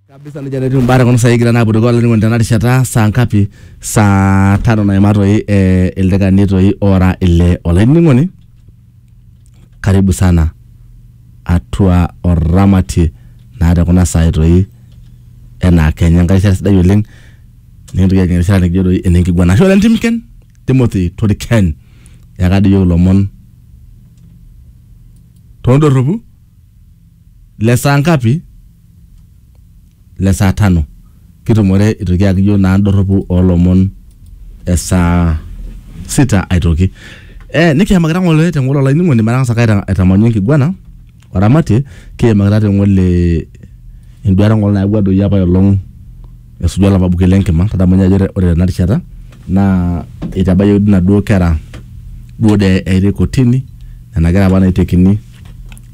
kabisa nejia naa etiu imbaa tekuna saai kigira naa apuo dukuya olainining'oni tena rishata saa ngapi saa tano naima toi eh, ildaikani toi ora ile olainining'oni karibu sana atua oramatie naa tekuna saai toi enaa kenya enkai rishata sidai oleng nikintoki ajing erishata nikijo doi enenkiguana ashe oleng timken timothy toriken yaka doi iyiok ilomon tondorropu le saa ngapi? Le saa tano. Kitumore aitoki ayaki iyiok naa indorropu oo lomon e saa sita aitoki. Eh nikiimakita ng'ole te ng'ole olainining'oni matang'asa ake aitamanyu enkiguana o ramatie kiimakita te ng'ole enduata ng'ole nayawua doi apa ai olong' esuju olapa buket le nkima. Tadamu ninye ajo ore tena rishata naa itabayioki dii inaduo kera duo dee eyaitae kotini nena kera apa naitekini.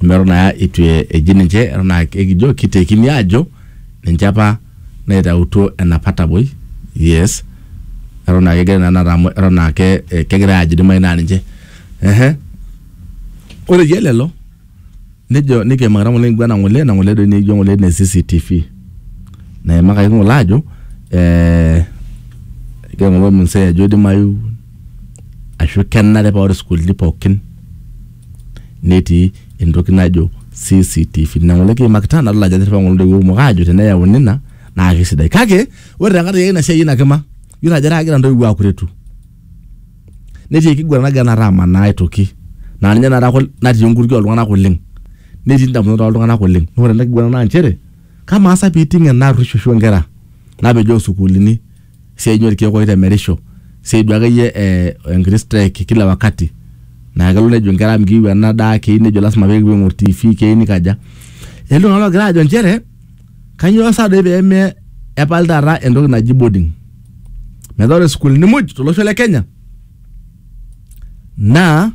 amu eton naa itu e- eji ninche eton naa ekijo kitekini aajo ninche apa naitautuo enapa taboi yes eton naa kegira naa inakata amu eton naa ke- eh, kegirae aajo idimai naa ninche ehe ore iyie lelo nejo nikiimakita ng'ole nikipuo ena ng'ole ena ng'ole doi nikijo ng'ole ene CCTV naimakaki ng'ole aajo eh, egira ng'ole ormsee ajo idimayu ashu kenare paa ore sukuulini pookin netii entoki najo CCTV. Nina ng'ole kiimakita nadol ajo etiripa ng'ole ntoiwuo kumok aajo teneyauni ina naa kesidai. Kake ore tenkaraki ake ina siai ina kima, iyiolo ajo etaa kegira ntoiwuo aakuretu. Netii enkiguran nagira tenakata amanaa aitoki naa ninye tenakata natii enkutukie ooltung'anak oleng', netii ndamunot ooltung'anak oleng'. Naa ore ena kiguran naa inchere kamaa sa piiting' ena arruoisho o nkera napejoo sukuulini. si ainyoo irkeek oitemerisho, si aidu akeyie eh, enkiti strike kila wakati. Na kelo nejo nkera mikiu ena daa, kei nejo lasima pekipuo aing'or TV, kei nikaja. Etii iltung'anak ogira ajo njere, kanyioo sa doi peme epali taata entoki naji boarding. Metaa ore sukuulini moj tolosho le Kenya, naa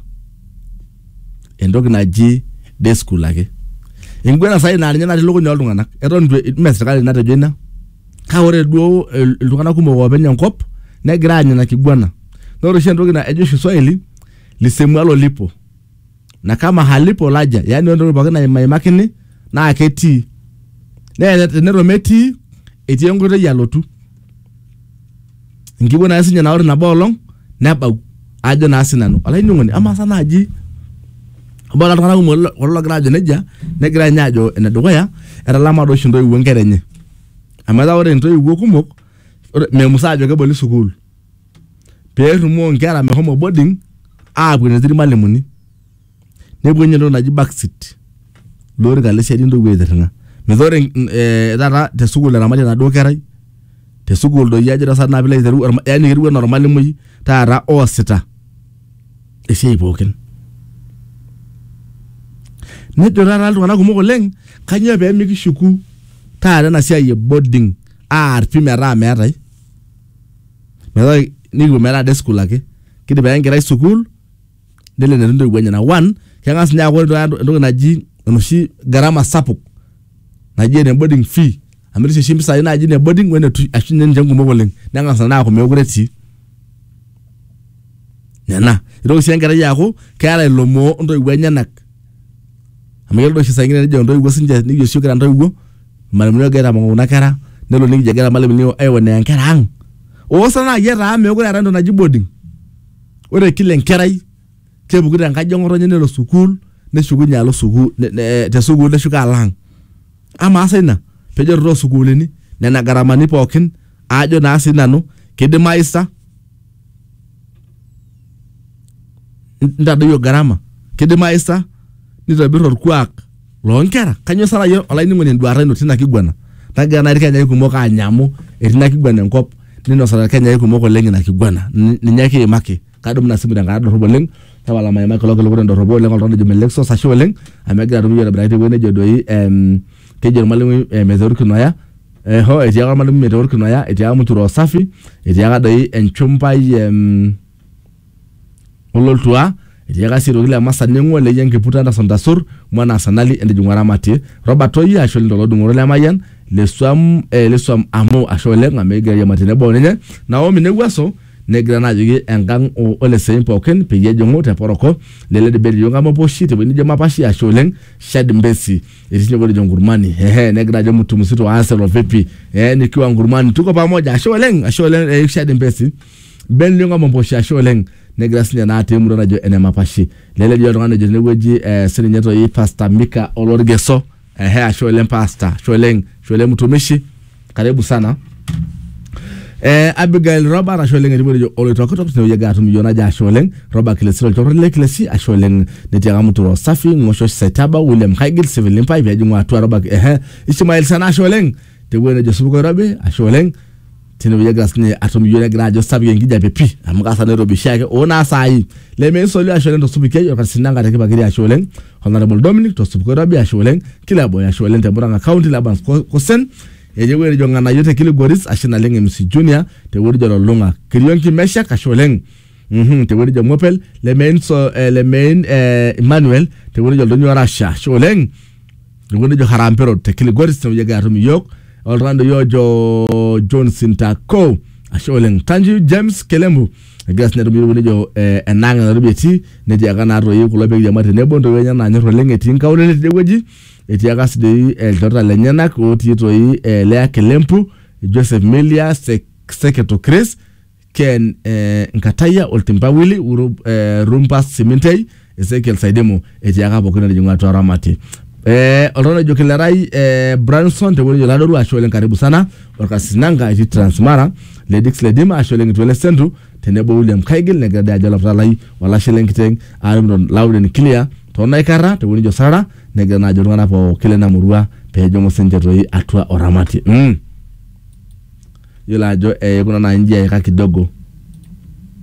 entoki naji day school ake. Eguana sai na ninye natii lukuny oltung'anak. Eton itu me sirkali natejo ina. kake ore duo il- iltung'anak kumok oopeny enkop negira aanya ina kiguana na ore oshi entoki na- ejo oshi swahili lisemualo lipo na kama halipo laja yani ore entoki pookin nai- naimakini naa ketii nee teneton metii etii enkoitoi alotu enkiguana ake sinye na ore nabo olong' nebau ajo na sinanu olainining'oni ama sa naji ebaki iltung'anak kumok kulo logira ajo nejia negira nye ajo enedukuya etalama doshi ntoiwuo nkera enye. Amu etaa ore intoiwuo kumok memusaa ajo keboli sukuul pee errumoo inkera mehomo boarding aapuo enetii irmalimuni nepuo ninye entoki naji backseat lorika le siadi intoiwuo aitirring'a metaa ore eh taata te sukuul eramati enaduo kerai te sukuul doi ajo taa sinanu piilo aitereu yaani ketiu enaa ormalimui taata oosita. esiai pookin nejo taata iltung'anak kumok oleng kanyoo pee mikishuku taata ena siai e boarding aar pii metaa meetae metaa nikipuo metaa day school ake kidim ake enkerai sukuul nelo enetii intoiwuo enyenak one keng'as ninye aaku ore taata entoki naji enoshi gharama sapuk. naji ene boarding fee amu etii oshi mpisai naji ne boarding wene tu- ashu ninye ninche nkumok oleng neng'as nena aaku meekure etii nena itoki sii enkerai aaku keeta ilomoo ontoiwuo enyenak amu kelo oshi saa ingine nejo intoiwuo sinche nikijo oshi kira intoiwuo irmalimuni ogira aitamoo kuna kera nelo nikijo egira irmalimuni aionea inkera ang oosa naaji etaa meekure eetae entoki naji boarding ore kila enkerai kepuku te nkaji eng'otonye nelo sukuul neshukunye alo sukuul ne- ne- te sukuul neshuko alo ang amaa sa ina pejo too sukuulini nena garamani pookin aajo naa sii nanu kidimayu sa nitadoyio gharama kidimayu sa nitobir orkuak loonkera kanyio sa naaji olainining'oni enduata ino tina kiguana nagira naaji irkenyai kumok aanya amu etii ina kiguana enkop ninosita irkenyai kumok oleng ina kiguana Ni- ninye kiimaki kadumu ina simu tenkata dorrop oleng tapala maimai kulo kiliku tendorropo oleng oltung'ani ojo Melexos ashe oleng amu egira atum iyiok aitobiraki tewueji nejo doi em, kejo ormalimui eh, meta orkinoya eh, ho etiaka ormalimui meta orkinoya etiaka mchura usafi etiaka doi enchumpai em, ololtua etiaka sii aitoki le masa neng'ua leyie enkiputa entasuntasur mwana asanali entijing'u aramatie Robert Toyia ashe oleng tolodung'oto le mayian lesuam eh, lesuam amu ashe oleng amu ekigira airiamari tenebo oninye Naomi newuaso Negira naa ajoki engang o oleseim pookin peyie ejing'u te poroko lele debate iyiook amu epuo oshi tewueji nijo mapashi ashe oleng Shad Mbesi etii sininye obo ojo Nkurmani ehe negira ajo mtu mzito wa Arsenal vipi eh nikiwa Nkurmani tuko pamoja ashe oleng ashe oleng eh, Shad Mbesi Ben Lionga Momposhi ashe oleng negira sininye naa atii emurua najo ene mapashi lele dii oltung'ani ojo tinewueji eh, sininye toi Pastor Mika Olorgeso Ehe, ashe oleng pasta, ashe oleng, ashe oleng mtumishi. Karibu sana. Eh, Abigail Robert ashe oleng etiu ejo oloitokitok tinewueji egira atum iyiook najo ashe oleng Robert Kilesi olchorro le Kilesi ashe oleng netii ake Muturo Safi Ng'osho Setaba William Haigil Civil Limpai pejing'u atua Robert ehe Ishmael Sana ashe oleng tewueji nejo Supuko Irobi ashe oleng tinewueji egira sinye atum iyiok negira ajo sapuk enkijape pii amu kasa nairobi oshiake oo naa saai lemeisoli ashu oleng tosupukiai orkatisi Nanga te Kipakiri ashe oleng Honourable Dominic tosupuko oirobi ashe oleng Kileboy ashe oleng te Murang'a County Labans Ko- Kosen etii ewueji nejo Ng'anayio te Kilgoris ashe naleng MC Junior te wueji nejo Lolong'a Kirionki Meshak ashe oleng Mhm, te wueji nejo Ng'opel Lemein so, eh, Lemein eh, Emmanuel te wueji nejo Oldonyio Orasha ashe oleng Ilikuwa nejo Harambee Road te Kilgoris tenewueji atum iyiook oltung'ani doi ojo John Sintako ashe oleng thank you James Kelembu egira sinye atum iyiook nejo eh, enaang enatobi etii netiaka naa toi kulo pekiama tenebo ntoiwuo enye naanyor oleng etii nkaulele tidie wueji etiaka si doi eh, ilchoreta lenyenak otii toi eh, Lea Kelempu Joseph Melia Sek- Seketo Chris Ken eh, Nkataya, Oltimpa Willy, Uru, eh, Rumpas Simintei, Ezekiel Saidemo, etiaka pookin natijing'u atua Ramati. Eh, oltung'ani ojo Kilerai eh, Branson tewueji ojo Ladoru, ashe oleng karibu sana, Olkasis Nanga etii Transmara, Ledix Ledima, ashe oleng Kitwele Sentu, tenebo William Kaigil, negira dii ajo olapita lai, olashe lenkiteng, Arimton Lauden Kilia, toonaikarra tewueji ojo Sarara, negira naa ajo iltung'anak pookin lena murua pejing'u sinche toi atua Oramati. Mm. yiolo ajo eikuna naa inji eika kidogo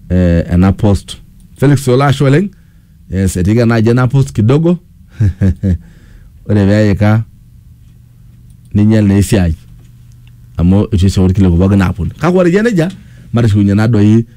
eh, ena post Felix Ola ashe oleng yes etiika naaji ena post kidogo ore peika ninyial naa esiai amu itu eisho irkiliku pookin aaponu kake ore eyia nejia matishiunye naa doi